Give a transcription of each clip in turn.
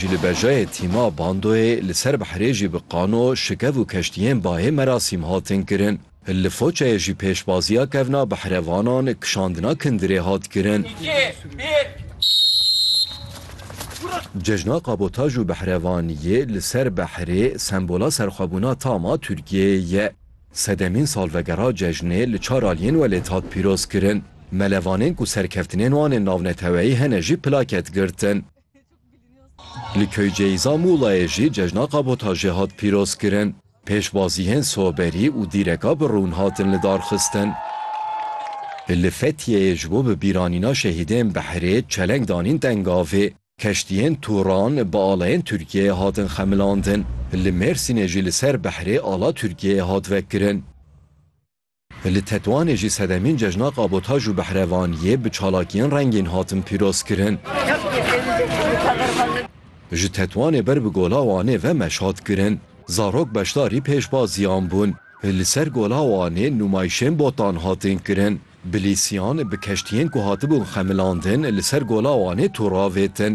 Ji li bejayê tîma bandoyê li ser behrê jî bi qano, şikev û keştiyên bayê merasîm hatin kirin. Li Foçayê jî pêşbaziya kevna behrevanan, kişandina kindirê hat kirin. Cejna kabotaj û behrevaniyê li ser behrê sembola serxwebûna tam a Tirkiyeyê ye. Sedemîn salvegera cejnê li çar aliyên welêt hat pîroz kirin. Melevanên ku serkeftinên wan ên navneteweyî hene jî plaket girtin. Li Köyceîza Mulayê jî cejna kabotajê hat pîrozkirin. Pêşbaziyên soberî û dîreka bi rûn hatin lidarxistin. Li Fetiyeyê ji bo bi bîranîna şehîdên behrê çeleng danîn tengavê. Keştiyên Turan bi alayên Tirkiyeyê hatin xemilandin. Li Mêrsînê jî li ser behrê ala Tirkiyeyê hat vekirin. Li Tetwanê jî sedemîn cejna kabotaj û behrevaniyê bi çalakiyên rengîn hatin pîrozkirin. Ji Tetwanê ber bi Gola Wanê ve meş hat kirin. Zarok beşdarî pêşbaziyan bûn. Li ser Gola Wanê nûmayîşên botan hatin kirin. Bilîsiyan bi keştiyên ku hatibûn xemilandin li ser Gola Wanê tûr avêtin.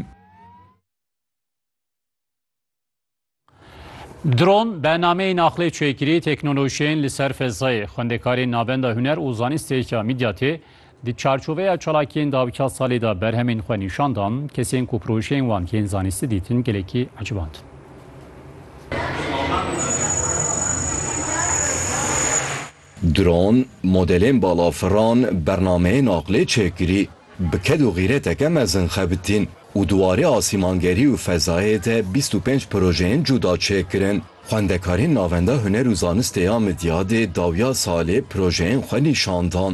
Dron be nameyên aqlê çêkirî teknolojiyên li ser fezayê, xwendekarên navenda huner û zanistê ya Midyatê di çarçoveya çalakiyên dawika salê de berhemên xwe nîşan dan, kesên ku projeyên wan tên zanistî dîtin gelekî ecibandin. Dron, modelên balafiran, bernameyên aqlê çêkirî, bi ked û xîreteke mezin xebitîn û di warê asîmangerî û fezayê de bîst û pênc projeyên cuda çêkirin. Xwendekarên Navenda Huner û Zanistê ya Midyadê dawiya salê projeyên xwe nîşan dan.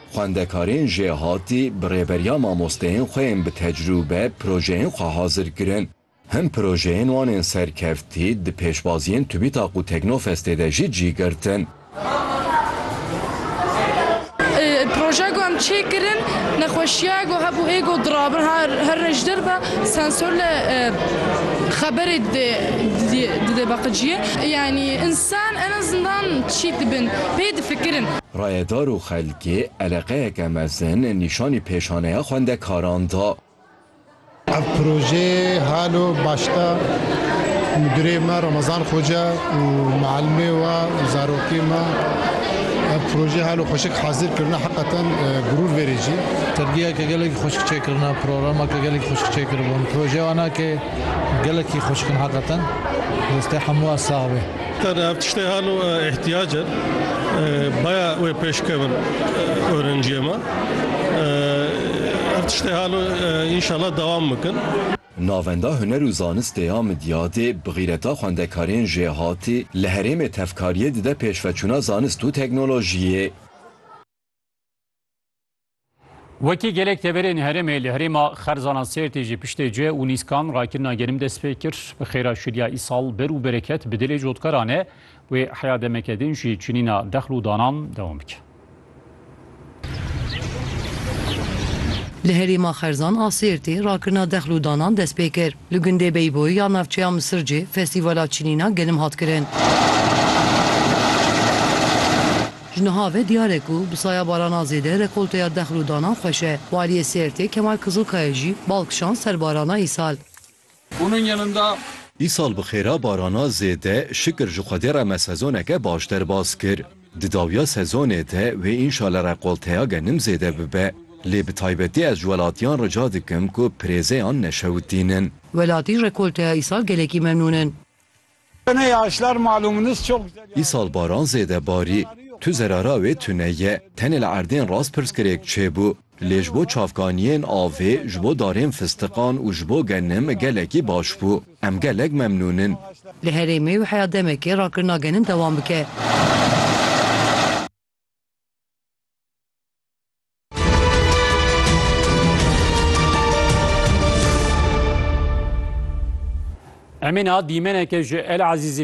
Xwendekarên jêhatî bi rêberiya mamosteyên xwe yên bi tecrûbe projeyên xwe hazir kirin. Hin projeyên wan ên serkeftî di pêşbaziyên TÜBİTAK û Teknofestê de jî cî girtin. Projeya ku em çê kirin nexweşiya ku hebû hê ku dirabin her rejdir be sensor li xeberê dide baqiciyê. Yanî însan en azından çî dibin pê difikirin. Rayedar û xelkê eleqeyeke mezin nîşanî pêşaneya xwendekaran da. Ev projeyê halo başta Mudirê me Ramazan Xoca û Mualimê we û zarokê me ev projeyê halo xweşik hazir kirine heqeten gurûr verê cî. Sergiyeke gelekî xweşik çêkirine, programeke gelekî xweşik çêkiribûn. Projeya wan a ke gelekî xweşik in heqeten. Destê hemû a sax be. Her ev tiştê hal û îhtîyac e. Baya wê pêş kevin orenciyê me. Ev tiştê hal û înşala dewam bikin. Navenda Huner û Zanistê ya Midyadê bi xîreta xwendekarên jêhatî li herêmê tevkariyê dide pêşveçûna zanist û teknolojiyê. Wekî gelek teberên herêmê li herêma xerzana Sêrtê jî piştê cih û nîskan rakirina genim dest pê kir. Bi xêra şiliya îsal bir û bereket bi dilê cotkaran e. Wê heya demeke din jî çinîna dexl û danan dewam bike. Li herêma xerzan a Sêrtê rakirina dexl û danan dest pê kir. Li gundê Beyboy ya navçeya Misircê festîvala çinîna genim hat kirin. Ji niha ve diyar e ku bi saya barana zêde rekolteya dexl û danan xweş e. Waliyê Sêrtê Kemal Kizilkaya jî bal kişand ser barana îsal. Bunun yanında. Îsal bi xêra barana zêde şikir ji Xwedê re me sezoneke baş derbas kir. Di dawiya sezonê de wê înşale rekolteya genim zêde bibe. Lê bi taybetî ez ji welatiyan rica dikim ku pirêzeyan neşewitînin. Welatî ji rekolteya îsal gelekî memnûn in. Îsal baran zêde barî. Tu zerara wê tune ye. Tenê li erdên rast pirsgirêk çêbû, lê ji bo çavkaniyên avê, ji bo darên fistiqan û ji bo genim gelekî baş bû. Em gelek memnûn in. Li herêmê wê heya demekê rakirina genim dewam bike. Emîna dîmeneke ji El Ezîzî